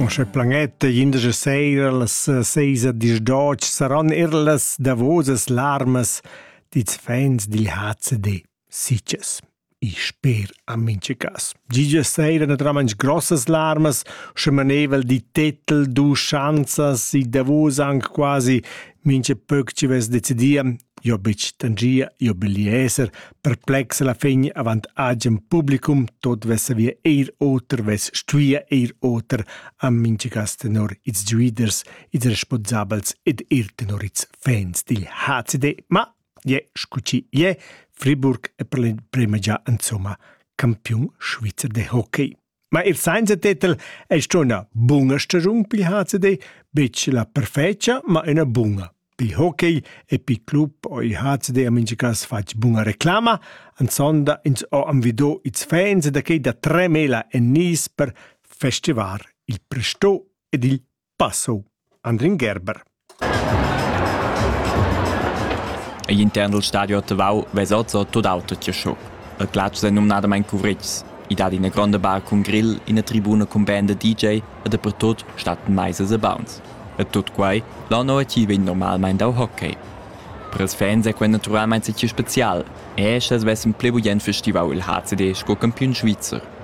Sche planetta indesch seira las seis a disdotg saran er las davosas larmas dits fans dil HCD sitges. I sper a mincha cas. Gigia seira naturalmaing grossas larmas, sche manevel di tetel, du schanzas, i davos anche quasi mincha pöc ci vess decidia Jo bitg tangia, jo belieser, perplex alla fin avant agen publicum tot vessa via eir oter, vess stuia eir oter a minchagas tenor ils giuiders, ils responsabels ed eir tenor ils fans dil HCD, ma ie, scucci ie, Friburg è per l'emprema già insomma campiun svizzer de hockey. Ma il sainza tetel ei sto üna buna stagiun pil HCD, betg la perfecia, ma üna buna. Pil hockey e pil club ho il HCD a mincha cas fatg buna reclama. An sonda ins ho invido ils fans da quei da tremela e nis per festivar il presto ed il Passo, Andrin Gerber. Igl intern dal stadio a Tavau vesa oz tut auto tiascho. El glatsch è numnadamain cuvritgs. I dat ina gronda bar cun grill, ina tribuna cun band da DJ e dapertut stattan maisas e bauns. E tut quai l'anno a ti vegn normalmain dau hockey. Per ils fans è quel naturalmain stì spezial, e sche vessem pli bugen festivau il HCD sco campiun svizzer.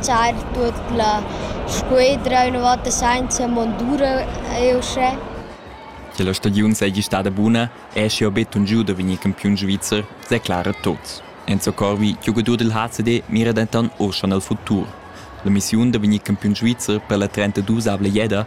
tschar tuot la squedra üna volta sainza mondura eau uschè. Sche la stagiun seigi stada buna, eschi jau betun giu da vegnir campiun svizzer, declara Tots. Enzo Corvi, giogadur del HCD, mira denton uschan al futur. La missiun da vegnir campiun svizzer per la 32-avla jeda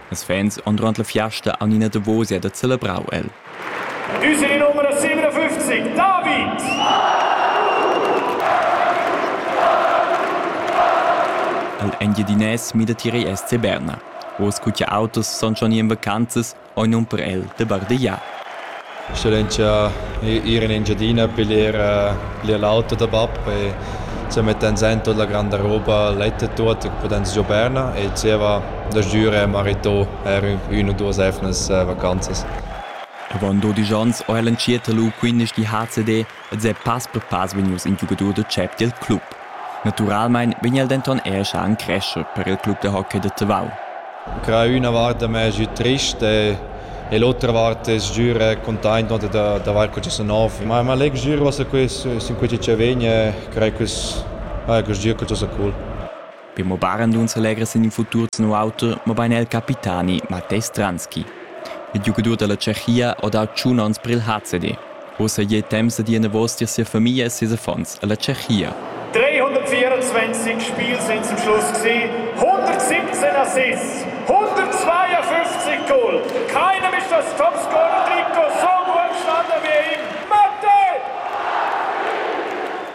Ils fans han durant la fiasta aunc ina davosia da celebrau el. User numero 57, David! El Engiadinès mida tier SC Berna. Oz cun autos san schon ir en vacanzas, ei num per el de bardegiar. Sch'ell'entscha ir in Engiadina a piglier bler l'auto da bab e sa mettan en tut la granda roba letta tut che pudans giobar e zieva da giürer marito er üna u duos emnas vacanzas. Avaunt dodisch ans ho el entschiet lu quindesch di HCD ed è pass per pass vegnius in giugadur da tschep dil club. Naturalmein vegn el denton era schar encrescher per il club da hockey da Tavau. Cra üna vart da me es trist e l'otra vart es giür containt no d'avair que sa nov. Ma ma leg giür was a quest sin quei chi vegn e crei quest ah, quest gir que sa cool. Be mobain nun s'allegra sin il futur tenor auter, mobain er il capitani Matej Stranski. Il giugadur da la Tschechia ha dà tschun onns per il HCD. Ussa è temps da dir enavos tier sia famiglia e ses affons alla Tschechia. 324 Spiele sind zum Schluss gewesen, 117 Assists, 152 Goal. Keinem ist das Topscorer-Trikot so gut gestanden wie ihm.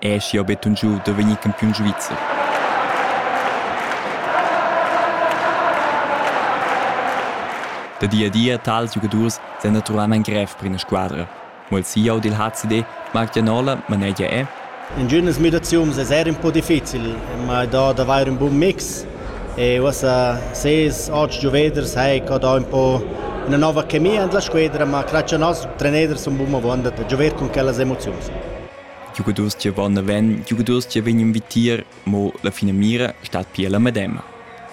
Ei aschia buca giu da vegnir campiun svizzer. Da di a di ein tals giugadurs senaturalmein grev per ina squadra. Mo il CEO dil HCD, Marc Gianola, manegia è. Intginas midaziuns es eir ün po difficil, ma ei dà d'avair ün bun mix e uossa ses otg gioveders hai ca dà ün po üna nova chemia in la squedra, ma grazcha a nos treneder sun bun avaunt da giover cun quellas emoziuns. giugadurs giavan naven, giugadurs che vegnan vitier, mo la finamira stat pia la medema.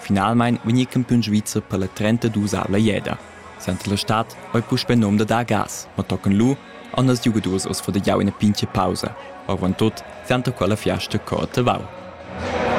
Finalmein vegni campiun svizzer per la 32-avla jeda. Senta la stad ei puspei num da dar gas, ma tocan lu anders giugadurs oz fo da jau ina pintga pausa. Avon tut senta quella fiasta cor Tavau.